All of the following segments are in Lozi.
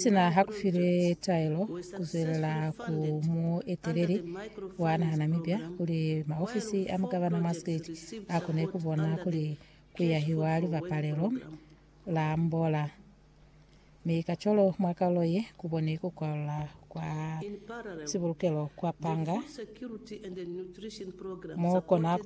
Sina ha ku file taelo ku zwelela ku mueteleli wa naha Namibia kuli maofisi a mugavana mwa Skate a kone ku bona kuli ku yahiwa libapalelo la mbola, mi kacwalo mwa kaulo ye ku boni ku kwalula kwa sibulukelo kwa panga mo kona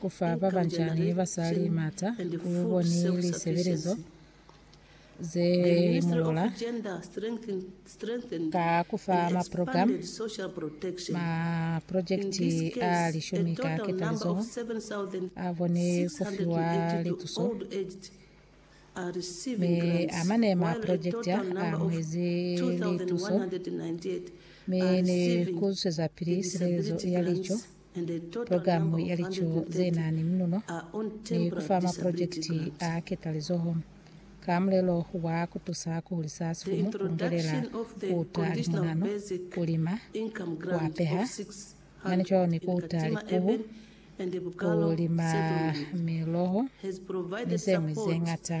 Ku fa ba bancañi ni basali mata ku bo ni lisebelezo ze mulola ka ku fa maprogramu, maprojekiti a lishumi ka ketalizoho a bo ni ku fiwa lituso, mi a mane maprojekiti a a muezi lituso, mi ni ku zwezapili silelezo ya lico. Pulogalamu ya lico ze na ni muluno ni ku fa maprojekiti a ketalizoho ka mulelo wa ku tusa ku hulisa sifumu, ku lungelela ku uta limunano, ku lima, ku apeha, mane cwalo ni ku uta likubu, ku lima miloho, ni ze ñwi ze ñata.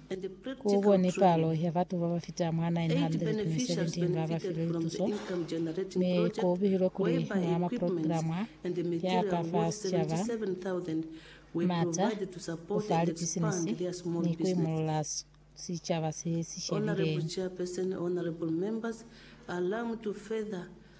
Ku bo ni palo ya batu ba ba fita mwa 917 ba ba filwe lituso, mi ku bihilwe kuli mwa maprograma ya ka fa sicaba, mata, ku fa lipisinisi, ni ku imulula sicaba se si shebileng.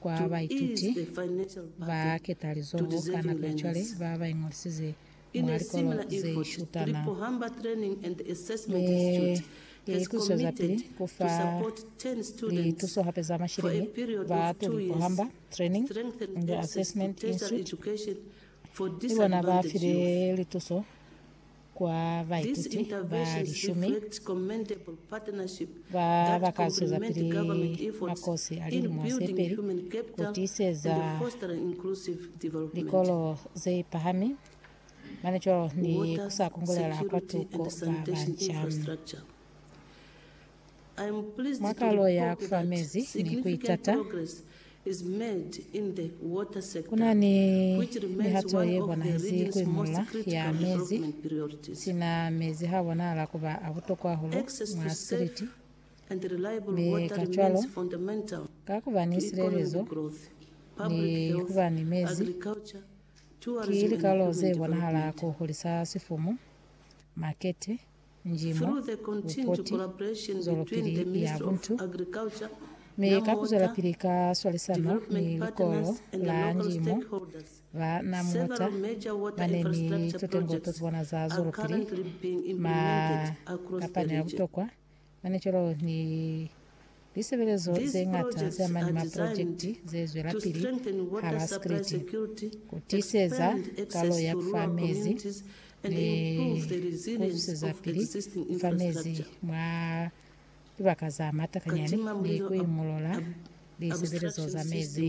Kwa baituti ba ketalizoho ka nako ya cwale ba ba iñolisize mwa likolo ze shutana, ne i kucwezapili ku fa lituso hape za masheleñi ba tuli Pohamba Training and Assessment Institute. Ki bona ba file lituso. kwa baituti ba lishumi ba ba ka zwezapili makosi a lilimo ze peli ku tiiseza likolo ze pahami mane cwalo ni ku sa kungulela kwa tuko ba banca. Mwa kalo ya kufa mezi ni kuitata, kuna ni mihato ye bonahezi kuimolola ya mezi. Sina mezi ha bonahala kuba a butokwa hahulu mwa siliti, mi kacwalo, ka kuba ni silelezo ni kuba ni mezi, ki likalo ze bonahala ku hulisa sifumu, makete, njimo, bupoti, zwelopili ya buntu, mi ka kuzwelapili ka swalisano ni likolo la njimo, ba na muta bane ni totengo tozibona za zwelopili ma kapani a butokwa, Mane cwalo ni lisebelezo ze ñata ze amani maprojekiti ze zwelapili hala Sikriti, ku tiiseza kalo ya ku fa mezi ni ku zusezapili ku fa mezi mwa libaka za matakanyani ni ku imolola lisebelezo za mezi.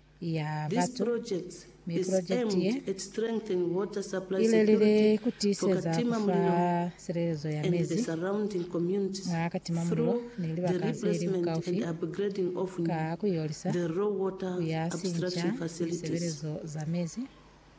ya batu, mi purojekiti ye ilelile kutiiseza kufa silelezo ya mezi mwa katima mulilo ni libaka zeli bukaufi ka kuiolisa, kuyasinca lisebelezo za mezi,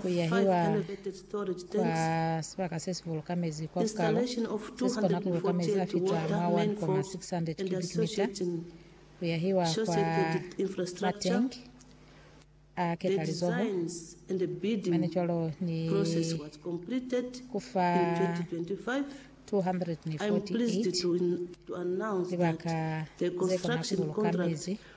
ku yahiwa kwa sibaka se si buluka mezi kwa bukalo se si kona ku buluka mezi a fita mwa 1,600 cubic mita, ku yahiwa kwa matenki a ketalizoho, mane cwalo ni ku fa 248 libaka ze kona ku buluka mezi.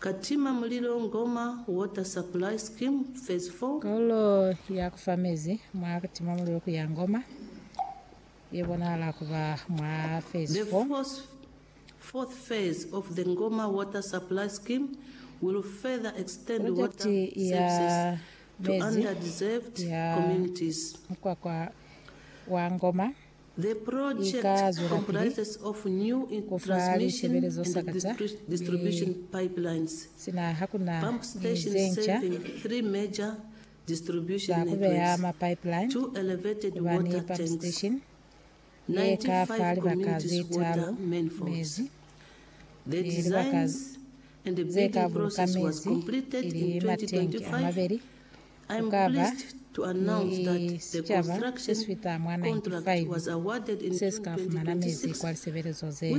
Ka tima mulilo Ngoma, Water Supply Scheme, Phase 4. Kaulo ya ku fa mezi mwa ku tima mulilo ku ya Ngoma ye bonahala ku ba mwa Phase 4. The fourth phase of the Ngoma Water Supply Scheme will further extend water Projekiti ya services to mezi under-deserved ya communities. mukwakwa wa Ngoma i ka zwelapili ku fa lisebelezo sa ka za lipipe sina ha ku na ni ze nca za ku beya mapipeline ku ba ni pump station ye ka fa libaka ze talu mezi ni libaka ze ka buluka mezi, ili matenki a mabeli ku ka ba ni sicaba se si fita mwa 95 se si ka fumana mezi kwa lisebelezo zeni.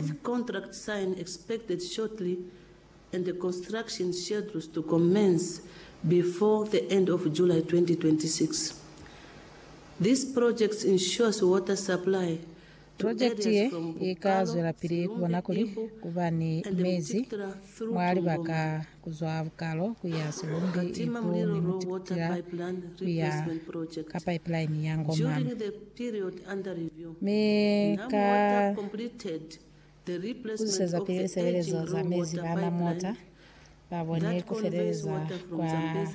Projekiti ye i ka zwelapili ku bona kuli ku ba ni mezi mwa libaka kuzwa bukalo kuya silumbi ibu ni mutikutila kuya ka pipeline ya Ngomane. Mi ka kuzwiseza pili lisebelezo za mezi bana mota ba boni kufeleleza kwa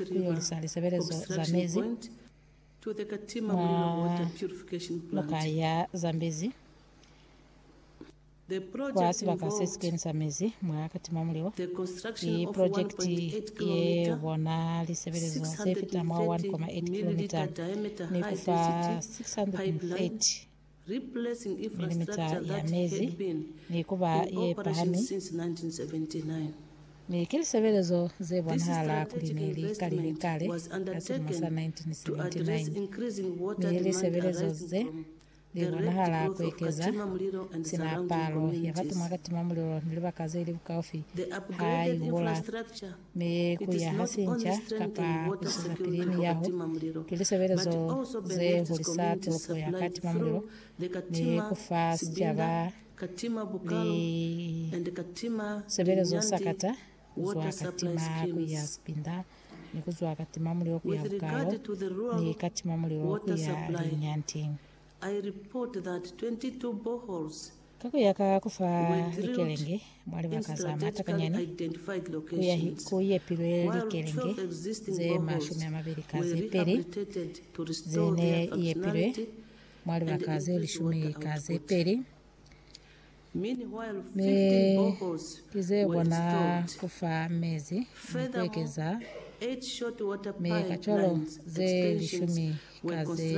kuyolisa lisebelezo za mezi mwa noka ya Zambezi. Kwa sibaka se si kenisa mezi mwa katima mulilo, ki projekiti ye bona lisebelezo ze fita mwa 1.8 kilometre ni ku fa 630 milimetre ya mezi ni ku ba ye pahami, mi ki lisebelezo ze bonahala kuli ne li kalile kale ka silimo sa 1979, mi lisebelezo ze Li bonahala ku ekeza sina palo ya batu mwa katima mulilo ni libaka ze li bukaufi ha i hula, mi ku yaha sinca kapa ku siza pili miyaho ki lisebelezo ze hulisa tolopo ya katima mulilo ni ku fa sicaba lisebelezo sakata kuzwa ka tima kuya kupinda, ni kuzwa ka tima mulilo kuya bukalo, ni ka tima mulilo kuya linyanting. Ka kuya ka kufa likelenge mwa libaka za matakanyani, ku yepilwe likelenge ze mashumi amabili ka zepeli, ze ne yepilwe mwa libaka ze lishumi ka zepeli, Mi ki ze kona ku fa mezi ni ku ekeza mi kacwalo ze lishumi ka ze